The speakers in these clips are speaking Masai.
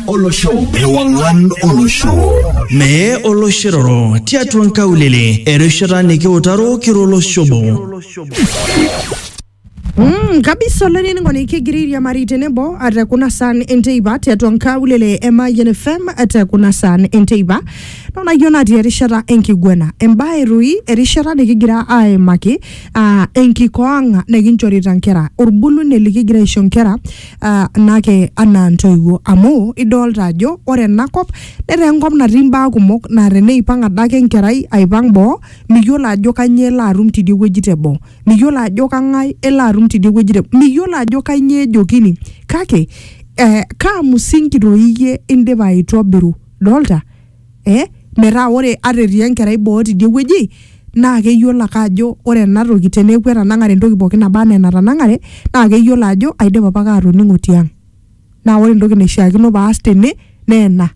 olosho ewang'an olosho mee oloshiroro tiatua nkaulele erishata nikiutaro kiro olosho obo Mm, kabisa olainining'oni kigira airiamari tenebo ate kuna saan enteipa tiatua nkaulele e Mayian FM ate kuna saan enteipa naonayio natii erishata enkiguena embae rui erishata nikigira aimaki uh, enkikoo ang nikinchorita nkera orbulunye likigira aisho nkera uh, nake anaa ntoiwuo amu idolta ajo ore enakop netaa enkop natii imbaa kumok naa teneipang adake enkerai aipang boo miyiolo ajo kanyio elo atum tidie wueji teboo miyiolo ajo kang'ae elo atum tidie wueji teboo miyiolo ajo kanyio ejokini kake eh, kaa musingi toi iyie indipa aitobiru dolta. eh, metaa ore ata etii enkerai boo tidie wueji naa keyiolo ake ajo ore ena toki teneeku etanang'are entoki pooki naba anaa enatanang'are naa keyiolo ajo aidipa apake atoning'o tiang naa ore entoki naishiakino paas tene naa ena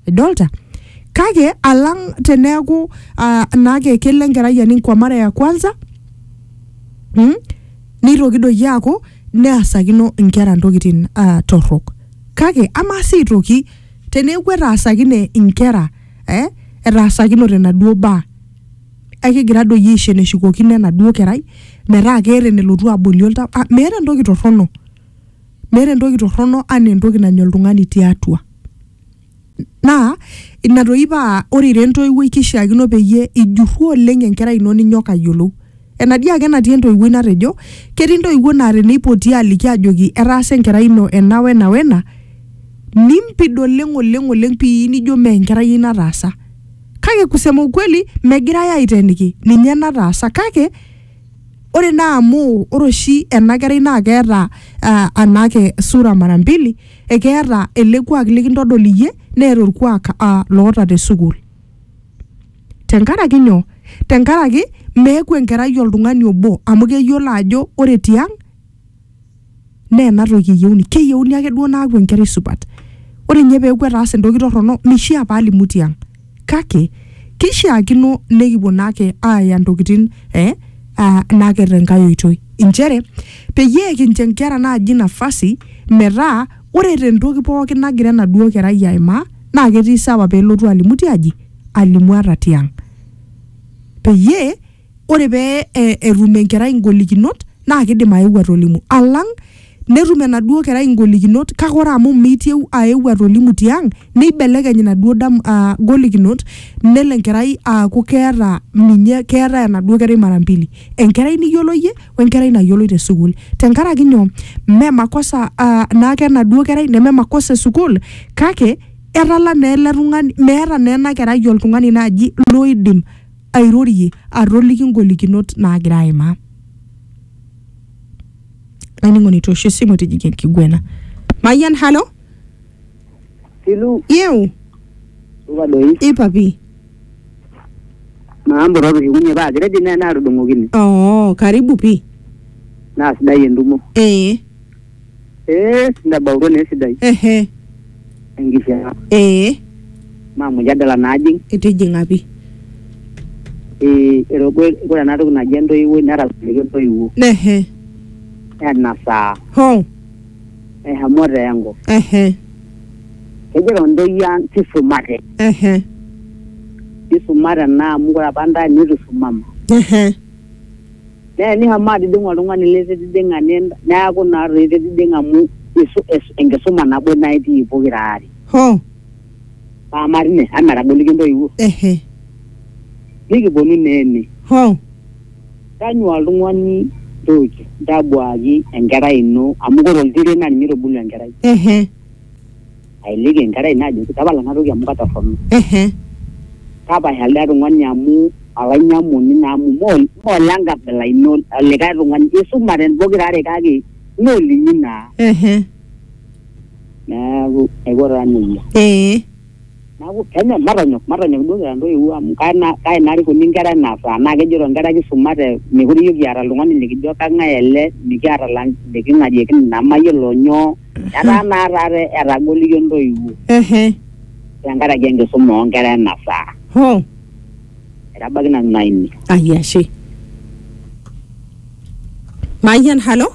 idolta kake alang teneeku uh, naake kelo enkerai aning kwa mara ya kwanza mm, neitoki doi aaku neasakino inkera ntokitin uh, torrok kake amaa sii aitoki teneeku etaasakine inkera eh, etaasakinote enaduo baa ekigira doi aisho eneshukokino enaduo kerai metaa keeta enelotu abolie oltau ah, meeta entoki torrono meeta entoki torrono anaa entoki nanya oltung'ani tiatua naa ina toi paa ore ira entoiwuoi kishiakino peyie ijurru oleng enkerai ino ninyok ayiolou Enatii ake natii entoiwuoi natejo, ketii ntoiwuo naa teneipoti aaliki aajoki etaasa enkerai ino ena wena wena, nimpid oleng oleng oleng pii nijo mee enkerai ai nataasa. Kake kusema ukweli megirai aiteeniki ninye nataasa kake ore naa amu ore oshi ena kerai naa keeta aa anaake sura mara mbili, ekeeta ele kuak likintodol iyie neeta olkuak aa loota te sukuul. tenkaraki nyoo tenkaraki meeku enkerai oltung'ani obo amu keyiolo ajo ore tiang naa ena toki eyieuni keyieuni ake duo naaku enkerai supat ore inye peeku etaasa entoki torrono mishia paalimu tiang kake kishiakino nekipuo naake aaya intokitin eh, uh, naake tenkae oitoi inchere peyie kincho inkera naaji nafasi metaa Ore te ntoki pooki nagira enaduoo kerai aimaa naa ketii sawa pee elotu alimu tiaji, alimu ata tiang. Peyie ore pee etum enkerai ingolikinot naa kidim aeu atolimu alang netum enaduoo kerai ingolikinot kake ore amu meitieu aeu atolimu tiang neibelekeny inaduoo dam aa golikinot nelo enkerai aaku keeta ninye keetae enaduoo kerai mara mbili. Enkerai niyiolo iyie wenkerai nayioloi te sukuul tenkaraki nyoo mme makosa ah, naake enaduo kerai neme makosa e sukuul kake etala naa ele tung'ani meeta naa ena kerai oltung'ani naaji loidim airorie atoliki ngolikinot naagira aimaa olainining'oni toosho esimu tijing'a enkiguena mayian halo Silu, yeu supa doi. ipa pi Maambo tootushukunye paa kiredi naa naatudung'okine. oo karibu pi Naa sidai entumo. ee Ee, intabautua naa esidai. ehe Enkishaa. ee Maa mujadala naajing. itijing'a pi Ee, erogo ore ena toki naji entoiwuoi netalaikine entoiwuo. ehe Ena saa. hoo ehemoto yangu ehe kejito ntoyie ang tisumate ehe tisumate naa amu kore apa ntae nitu isumama ehe naa enishomo atijing'a oltung'ani lititijing'a nin- neaku naa toi ititijing'a amu isu- is- enkisuma nabo naa itii pokira aare ho paa matii ine amu etagoliki intoiwuo ehe nikiponu naa ene ho Tanyua oltung'ani George ntabuaaki enkerai ino amu kore oltiren naa ninye oitubulu enkerai. Ehe. Ailiki enkerai ino ajoki tapala ena toki amu katorrono. Ehe. Tapasha lido tung'ani amu olainyamuni naa amu mee olenkabila ino olikae tung'ani. Isumate pokira are kake mee olinyi naa. Ehe. Neeku aiko taa neija. Ee. Neaku kenya matonyok matonyok duo kira ntoiwuo amu kae na kae narikuni nkera ena saa naa kejito nkera kisumate mekure iyiok kiata oltung'ani likijo kang'ae ele mikiata lang liking'arieki nemayiolo nyoo etaa naa taata etagolo iyiok ntoiwuo Ehe. tenkaraki enkisuma oonkera ena saa Ho. etabaiki nanu ina ine Ai ashe. Mayian halo.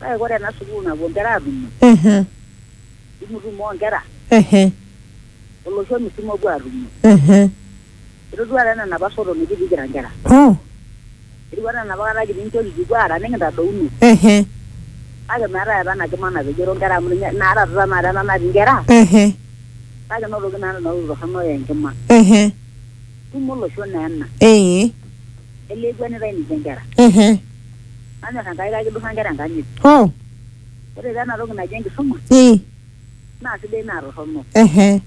Kake ore ena sukuul napuo nkera aatumo, Ehe, tumutumo oo nkera ehe, olosho misima opuo aatumo. ehe. Itodua taa ena napa soto nikitii kira nkera. Oh, Etiu anaa enapa kata kitii nchoo kikipuo aara nikintadouno. ehe, Kake meetae apa ena kima napejoro nkera amu ninye naa taata tenakata ena natii nkera ehe, kake enotoki naa nena tokitin torrono aa enkima. ehe. Tumo olosho naa ena. Ee, Elee ekuenitai ninche nkera. Ehe. Nanyor Enkai kake kidurra nkera enkanyit. Oh. Ore taa ena toki naji enkisuma. Ee. Naa sidai naa torrono. Ehe.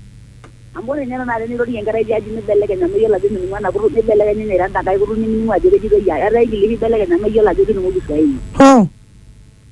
Amu ore ninye tenakata tenirorie enkerai tiaji nibelekeny amu iyiolo ajo mining'u ena kutuk nibelekeny ninye airo enkae kutuk nimining'u ajo kejitoi ai. Etaa igili pibelekeny amu iyiolo ajo kining'u kiswahili. Oh.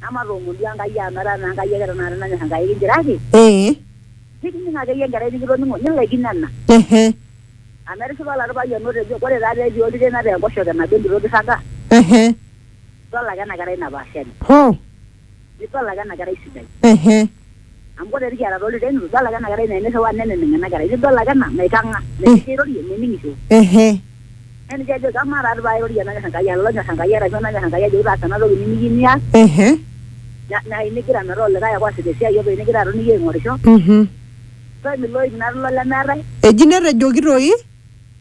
Namatoomono duo Enkai amu etaa naa Enkai ake tenakata nanyor Enkai kinchiraki. Ee. Nikining akeyie enkerai nikitoning'o nilaikino ena. Ehe. Amu etishipa oladuo payian otejo ore taa pee etii oltiren ata enkoshoke nabo entito kirraga. Ehe. Idol ake ena kerai napaashari. Hoo. Nidol ake ena kerai sidai. Ehe. Amu kore tikiata too loreren, eitu idol ake ena kerai nairriwaa neneneng ena kerai, eitu idol ake ena naikang'a, metii airorie, mening'isho. Ehe. Neya ninche ajoki amaa taa paa airorie enanyor Enkai arashu olonyor Enkai arashu enanyor Enkai ajoki taasa ena toki nimikiyieu nias. Ehe. Nai nigira metaa olikae ake oasita esiai openy nigira aton iyie aing'orisho. Ehe. Ore ilo oip natii ilo lemeetae. Eji netejoki toi.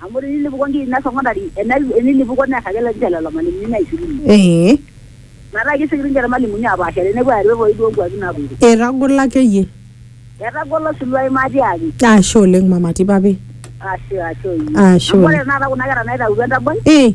Amu tinilipuko nkiri ina sokondari ena- enilipuko neas ake ninche lelo malimuni naishirunye. Ee. Metaa kesioki ninche ilmalimuni apaashare nepuo aar irorei too nkuapi naapoito. Etagolo akeyie. Etagolo osiluai matiaaki. Ashe oleng mama Tipapi. Ashe, ashe oyie. Ashe Amu ore oleng. tenakata kuna kera naitautuo entaboi. Ee.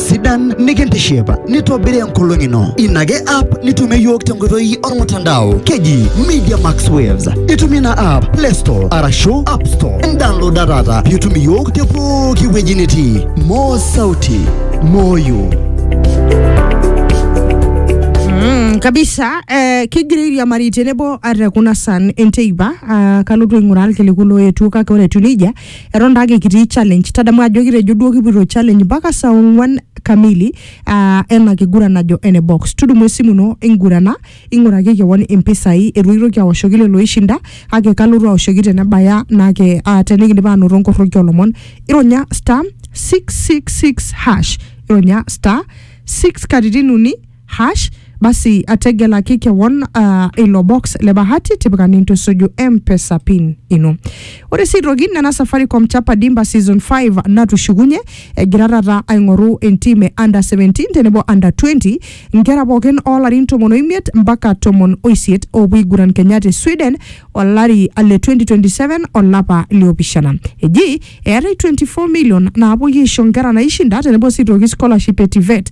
sidan nikintiship nitobiri enkolong ino ina ake app nitumie yiok tenkoitoi ormutandao keji media max waves itumie ina app play store arashu app store indownloada taata piitum iyiok te pooki wueji nitii moo sauti moyo Mm, kabisa eh, kigira airiamari tenebo ate kuna san enteipa ah, kalotu aing'uraa irkiliku looetuo kake ore etiu nejia Eton taake kitii challenge, tadamu ajo kitejo duo kipuoito challenge mpaka saa ong'wan kamili aa ena kiguran najo ene box. Tudumu esimu ino ingurana, ing'uraki kewon impisai itu kitoki awoshoki lelo oishinda kake kalotu awoshoki tenebaya naake aa tenikindip aanoto nkoroki oo lomon. Ironya star six six six hash, ironya star six katitin uni hash basi ategelaki kewon uh, ilo box le bahati tipika nintusuju mpesa pin ino ore sii aitoki nena safaricom chapa dimba season 5 natushukunye egira taata aing'oru entim e under 17 tenebo under 20 nkera pookin oolarin tomon oimiet mpaka tomon oisiet oopuo aiguran kenya te sweden olari le 2027 olapa liopishana eji eetai 24 million naapuoi aisho nkera naishinda tenebo sii aitoki scholarship e tivet